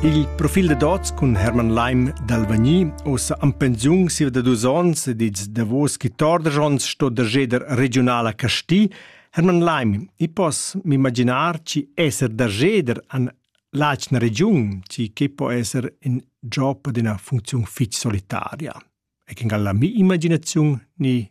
Il profil da dots cun Hermann Leim d'Alvagni ossa am pensiun siva da dus ons ed ils davos chi torder ons sto da jeder regionala Casti, Hermann Leim, i pos m'imaginar chi esser da jeder an lacna regiun, chi che po esser in job d'una funziun fich solitaria. E che ngalla mi imaginaziun ni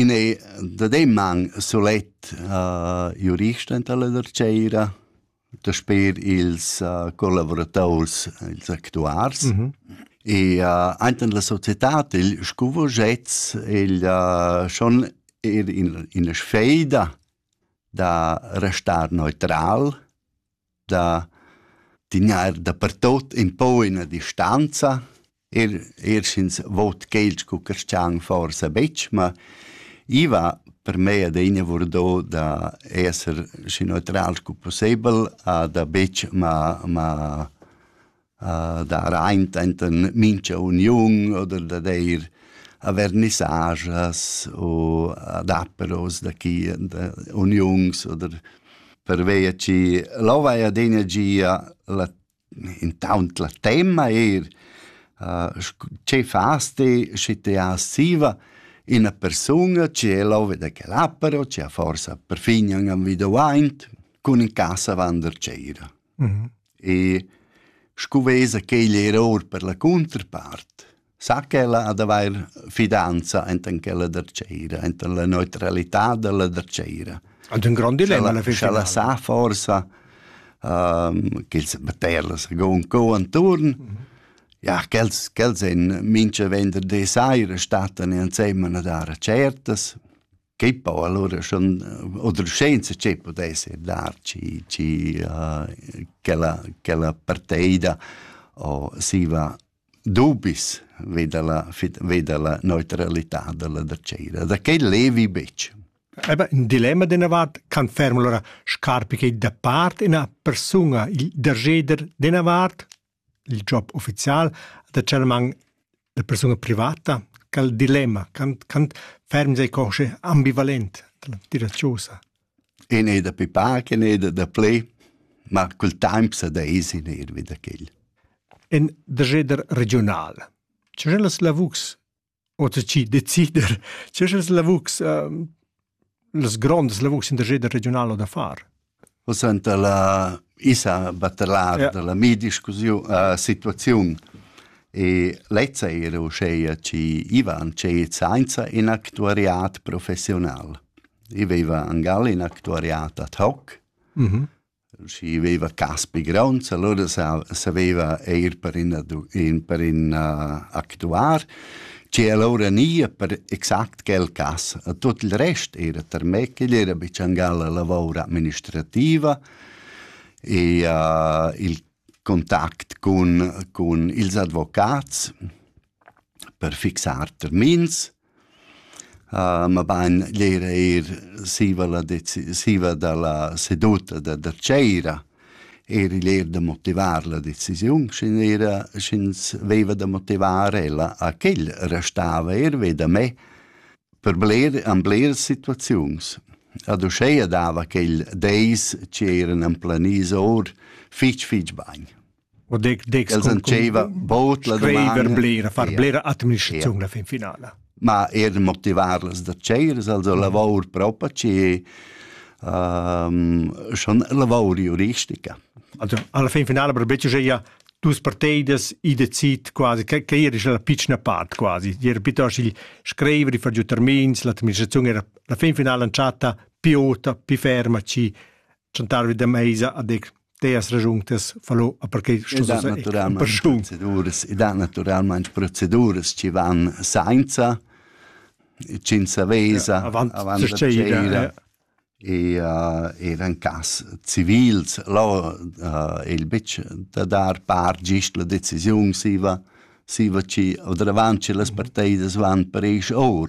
In ei dademman sulet jurist enta la dartgeira, dasper ils collavurators, ils actuars. E ainten la societad il scuvogetz el schon er ina sfeida da restar neutral da dinar dapertot empau ina distanza, er er sch'ins vot quels co carstgan forsa betg, ma i va per mei adina vardo da esser schi neutral scu pussebel, a da betg ma ma dar aint enten mincha uniun oder da deir avernissagias u adapperos da chi da uniuns oder pervia chi lò vai adegna gia la intaunt la temma eir che fas ti schi ti has siva ina persunga chi è lò vi da quel appero chi ha forsa perfin ün individuaint cun in casa vander cera. E scu vesa quegl eir our per la cunterpart, sa ch'ella ha d'avair fidanza enten ch'ella dertscheira, enten la neutralità da la dertscheira. Ed ün grand dilemma alla fin finala. Sch'ella sa forsa ehm ch'els metter la second co anturn, ja quels quels ein mincha venderdi saira stattan insemma a dar certas. Che poi allora schon oder scienza che potesse dar ci ci uh, quella quella parteida o si va dubis veda la veda la neutralità della da cera da che levi bec Eba in dilemma de navat can ferm allora scarpi che da part ina persuna il dergeder de navat il job ufficial da tschelmanc da persuna privata quel dilemma quant quant ferm sei cosce ambivalent dalla tira chaussa In è da pipar, in è da, da ple, ma col temp sa da es in er vi da quel. En der jeder regional. C'è las lavurs Oter chi decider, che sch'els lavurs ehm, las grondas lavurs in der jeder regional o da far. O senta la isa batelar ja. della mi discussiun uh, situaziun e lezza era uscheia ci Ivan c'è sainza in actuariat professional. I veva angal in actuariat ad hoc, mm -hmm. Schi veva Caspi Gronds, allura saveva eir per in per in actuar, che allura nia per exact quel cas. Tuot il rest era termè, ch'igl era be tschangal la lavor administrativa e il contact cun cun ils advocats per fixar termins. mabain l'eir eir siva la deci- siva da la seduta da da tschera eir igl eir da motivar la decisiun, sch'ün era sch'ins veiva da motivar ella a ch'el restava eir ve da me per bler an bleras situaziuns. Ad uscheia dava quel deis ch'eran amplaniso our fich fich bagn. O dec dec els antscheva bod la scriver blera far blera administraziun la fin finala ma er de motivar las da tscheiras also lavor propa ci ehm schon lavor juristica also alla fin finala per becce ja dus parteidas i decid quasi che che era la piccina part quasi era piuttosto il scrivere far giù termins l'administrazione era la fin finala chatta piota pi ferma ci chantarvi da meisa a dec teas ragiuntas fallo a perquei sto da naturalmente proceduras e da naturalmente proceduras ci van sainza cinza vesa avant da e uh, era in cas civils là uh, il bitch da dar par gist la decisiun si va si va ci o davanti las parteidas van per eis or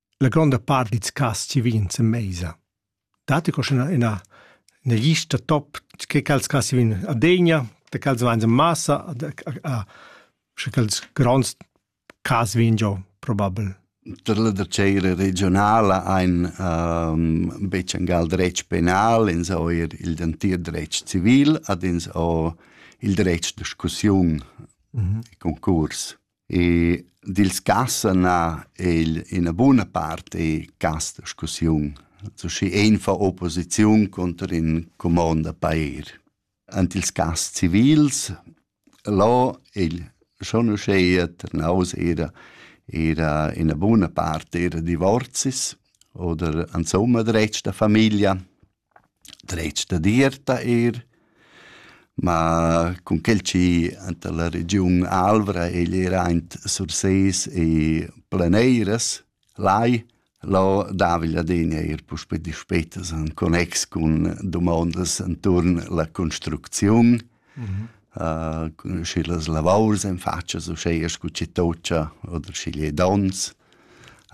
la gronda part dils cass chi vegnan sen meisa. Datti co ina ina ina lista top che quels cass chi vegnan a Degna, da quels vain en massa, a sche quels gronds cas vegn giò probabel. Tar la dacera regionala ein um, betg en gal dretg penal, ins ho er il dentir dretg civil, ad ins ho il dretg discussiun, mm -hmm. concurs. E dils cassen ha el ina buna part e cast discussiun. So schi ein fa opposiziun conter in comond da pair. Ant ils cast civils là il schon uscheia ternaus era era ina buna part era divorzis oder insomma dretg da familia dretg dad ir da eir. Ma cun quel chi anta la regiun Alvra egl era aint Sursés e Planeiras, lai, lo dava il Ladin eir puspè dispetas in connex cun dumondas inturn la construcziun cun schi las lavours en fatschas uschea scu chi tocha oder schi lé dons.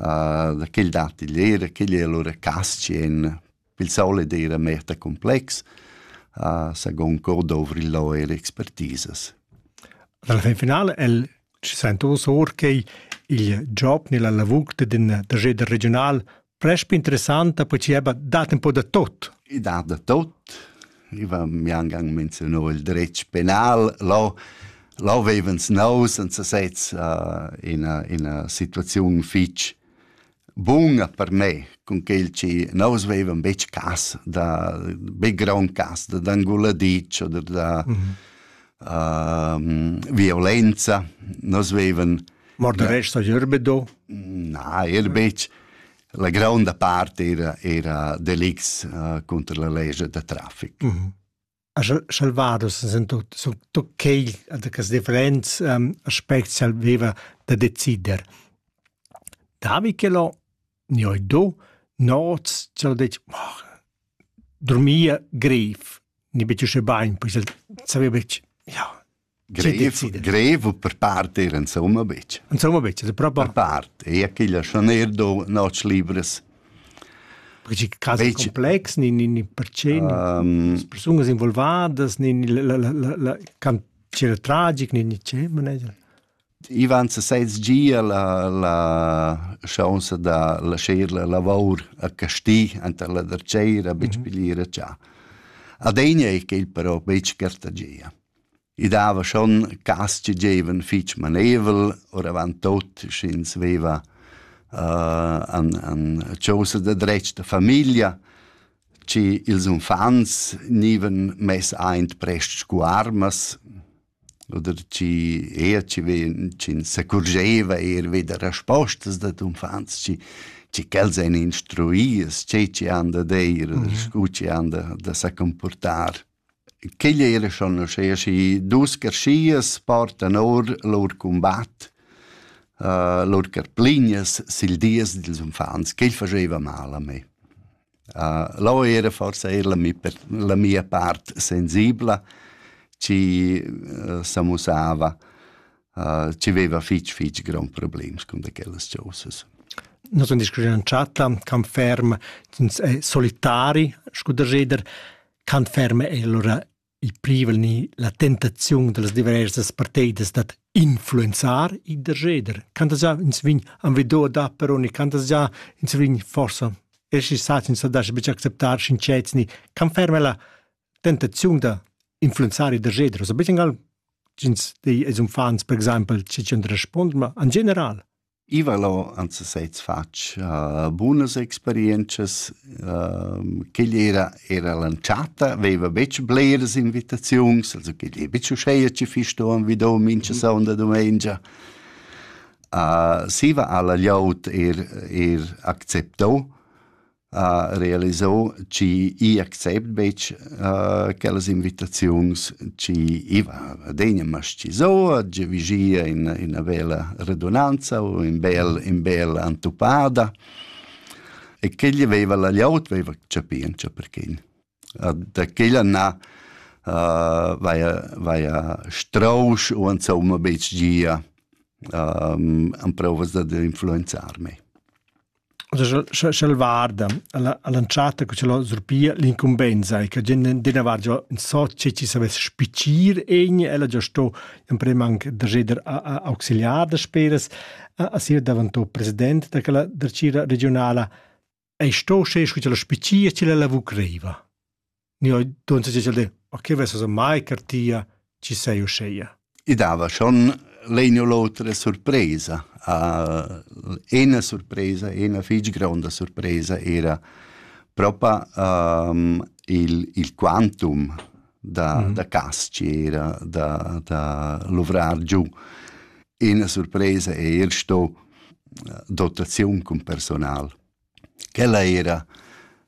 da quel dat il eira, quel è lura cas-chi en pel solet eira meta complex. Sagon co dovri lò eir expertisas. Dalla fin finale el ci sento or che il job nella lavur d'in trageder regional Presp interessanta percieba dat un po da tot. I dat da tot. Iva mi angang menziuno il dretg penal. Lo, lo vevens nou senza sez uh, ina, ina situaziun fitch bunga per me, con quel ci nous vevan bec cas, da be grand cas, da d'anguladic oder da mm -hmm. uh, violenza. Nos vevan Morderest a Gerbedo? Na, er betg. La gronda part era, era delicts uh, cunter la legia da traffic. Mm -hmm. Salvados sind tutto quel das differents um, aspects aveva da decider. Da Michelo ne ho do noz cel dec oh, dormia greif, ni betg usce bain, poi saveva ja Grev, grev per part era insomma betg. Insomma betg, è proprio... Per part, e a chigl schon er do noc libres. Perché casi betg... complex, ni, ni, ni percé, um, ni persunas involvadas, ni, ni la, la, la, la cantiere tragic, ni, ni c'è, manager? Ivan se sez gia la, la chance da lasciar la lavor a Casti anta la Derceira, betg mm -hmm. pigliera già. Adegna è quel però betg Cartagia. I dava schon cas che gievan fich maneivel, oravant tot sch'ins veva uh, an, an chosa da dretg da famiglia, che ils unfants gnivan mess aint prest scu armas, oder chi eir chi ven, ch'ins s'accurgeva eir vi da respostas dad unfants, chi chi quels ein instruies, che chi han da deir, mm -hmm. scu chi han da, da sa comportar. Quegl ei la schanoschea schi dus carschias portan or lur cumbat, lur carplignas sil dies dils unfants. Quegl fascheva mal a me. Lò era forsa era la mi la mia part sensibla, chi s'amussava, chi veva fitg fitg gronds problems cun da quellas chosas. Nus sun discurrü in chatta, camp ferm, ins è solitari, scu da jeder. Quant ferma è allura il privel ni la tentaziun da las diversas parteidas dad influenzar il derscheder? Quantas gia ins vegn envido da peroni? Quantas gia ins vegn forsa essi sats ins da betg acceptar sincets ni quant ferma è la tentaziun da influenzar il derscheder? Also betg ins dei als uffants per exaimpel che ti respond, ma en general. I vala ant sesez fatg uh, bunas experientschas. Uh, quegl era, era l'entschatta, veva betg bleras invitaziuns, also quegl è betg uscheia che fisto vi do mincha mhm. sonda domengia. Uh, siva alla gliaut er, er accepto, ha realisau chi i accept betg uh, quellas invitaziuns chi iva adegna mascizou, tge vigia in ina vela redunanza u in bel in bel antupada e che gli veva la liaut veva capì en perché da quella na vaia vaia strousch u insomma betg gia amprovas dad influenzar me. Sch'el varda all'entschatta che c'è surpia l'incumbensa e che dina vargia in so che ci savess spicir egni ella già sto in prem anche da geder auxiliar da speras a sir davantò president da quella dacira regionala ei sto sche scu la spicia chi la vu creiva. Ni oi donte si de, a che vesa mai cartia ci sei usceia. I dava schon legno l'otra sorpresa. Uh, ena sorpresa, ena fig gronda sorpresa era propa um, il, il quantum da, mm. da castiera, da, da luvrar giù. Ina surpresa è er sto eh, dotaziun cun personal. Quella era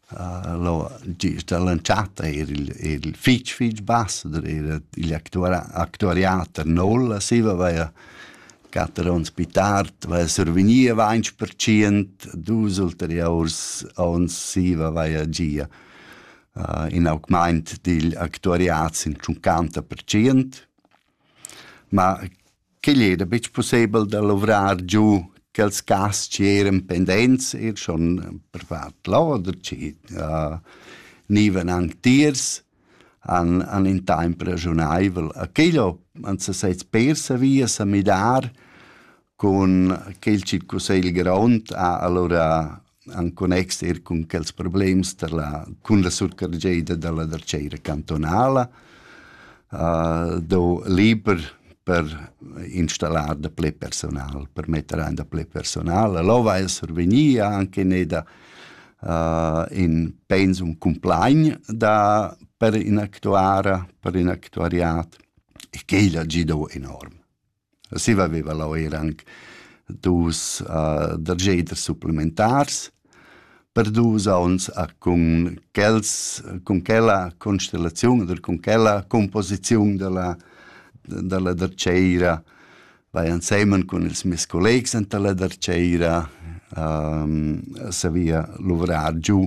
uh, lo, da lanciata era il, il fitch fitch ambassador, era il actuariater Nolla, si aveva quatter onns più tard, aveva surveniva 20%, dus ulteriori onns si aveva gia. uh, in augment digl actuariat sin 50%, ma quegl era betg pussebel da luvrar giu quels cas che eran pendents, er schon per fat loder, che uh, nivan antiers, an, an in temp ragiunaivel. A quello han se sets persa via sa midar, Cun quel chi cussegl grond ha alura en connex er cun quels problems da la, cun la surcargeda da la darchera cantonala uh, do liber per installar da ple personal, per metter ein da ple personal. Lova el survegnir anche ne da uh, in pensum complein da per in actuara, per in actuariat e quel ha gido enorm. Siva veva leu era anc dus uh, da geder supplementars per dus onns uh, cun quels cun quella constellaziun oder cun quella composiziun dalla dalla dertgeira vai ensemen cun ils mes collegs enta la dertgeira um, savia luvrar giu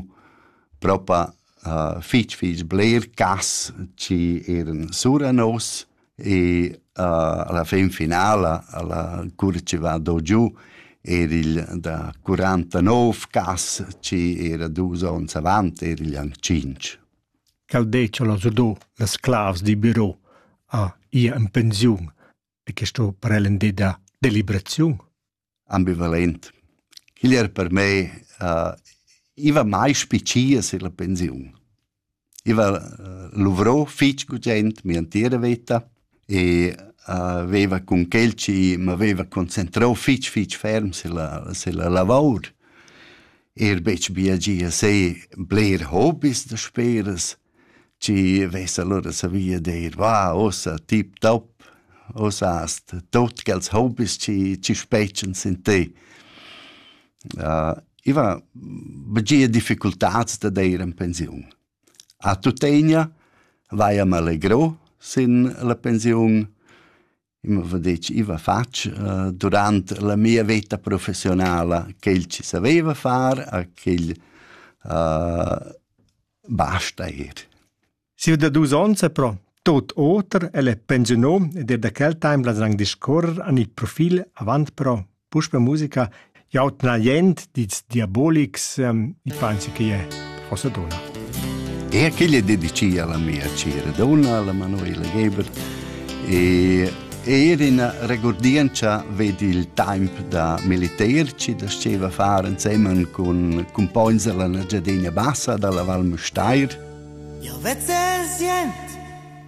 propa uh, fich fich bler gas chi eran sura nos e uh, alla fin finala alla cura chi va do giù era il da 49 gas chi era dus ons avant era il anc 5. Cal decia la do las clavs di biro a ia in pensiun e questo per ellen de da deliberaziun? ambivalent. Quel era per me uh, iva mai spiccia sur la pensiun. Iva uh, luvrò fitg gugent mia entira vita e uh, veva cun quel ci m'aveva concentrò fitg fitg ferm sulla, sulla lavor. Er betg bia gia se bler hobbies da speras, Ci vess allura savia dir, va, ussa tip top, ussa hast tot quels hobbies chi chi spetschans in te. I va begie difficultats da deir in pensiun. A tuttegna vaia m'allegro sin la pensiun Eu m'ava detg, i va fatg durant la mia veta professionala quel chi saveva far a quel basta eir. Sieu da dus ons è però tot oter, el è pensiunà ed er da quel temp las rang discorrer an il profil avant però Puspe musica jau tna jent dits diabolics um, i pensi che è forse dona. E aquella è dedicata alla mia cira donna, alla Manuela Geber e e era una regordienza vedi il tempo da militerci da steva fare insieme con con points della Giardina Bassa dalla Val Mustair. Io vezze sient